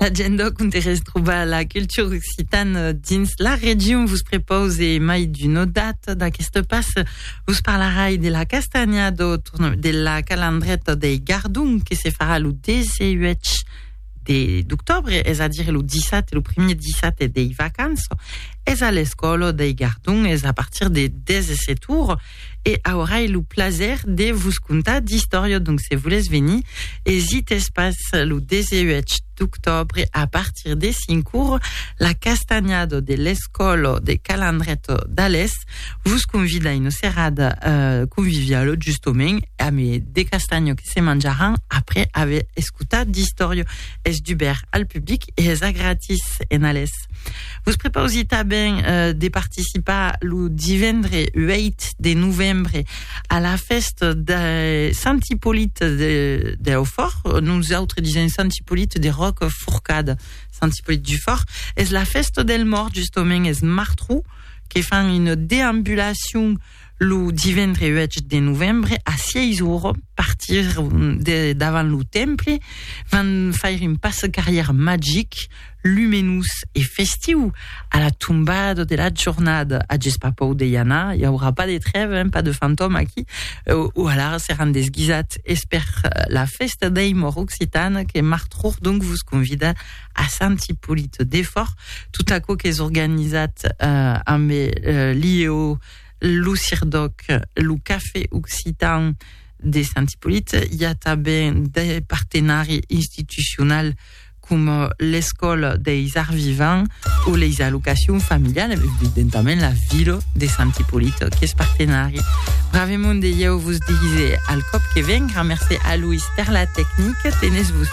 L'agenda on te retrobar la cultura occitana dins la región. Vos propose mai d'una data d'aquesta passe. Vos parlarai de la castanha do, de la calandreta de Gardon que se farà le 18 d'octobre, és a dire le 17, le premier 17 de vacances. És a l'escola de Gardon, és a partir de 17 heures. e aurai lo plaser de vos contar d'istòria donc se volètz venir esites pas lo 18 d'octobre a partir de 5 ur la castanhada de l'escòla de Calandreto d'Alès vos convida una serada euh, conviviala justament a me de castanha que se manjaràn après aver escotat d'istòria es dubèrt al public e es a gratis en Alès Podcast. Vos prepausi tanben eh, de participar lo divendre 8 de novembre a la festa de Sant Hippolit de, de Aufort. Nosaltres disem Sant Hippolit de Roc Forcada. Sant Hippolit du Fort. És la festa del mort, justament, és Martrou, que fan une déambulation Lo divendre 8 de novembre a 6 ora partir de davant lo temple van faire un passe carrière magic, lumenós e festiu a la tombada de la jornada. Ages pas pòur de i anar, i aurà pas de trève, hein, pas de fantòme aquí. O alara seràn desguisats es per la fèsta dei Mòrt Occitane que Marthe Rourdonc vos convida a Sant Ipolit de Fòrth, tot aquò qu'es organizat eh, amb eh, l'IEO, lo CIRDOC, lo Café Occitan de Sant Ipolit, i a tanben de partenari institucional com l'Escòla deis Arts Vivants o les allocacions familiales, evidentament la vila de Sant Ipolit, que es partenari. Bravemont de ieu vos dise al cop que ven, gramercé a Louis per la tècnica, tenez vos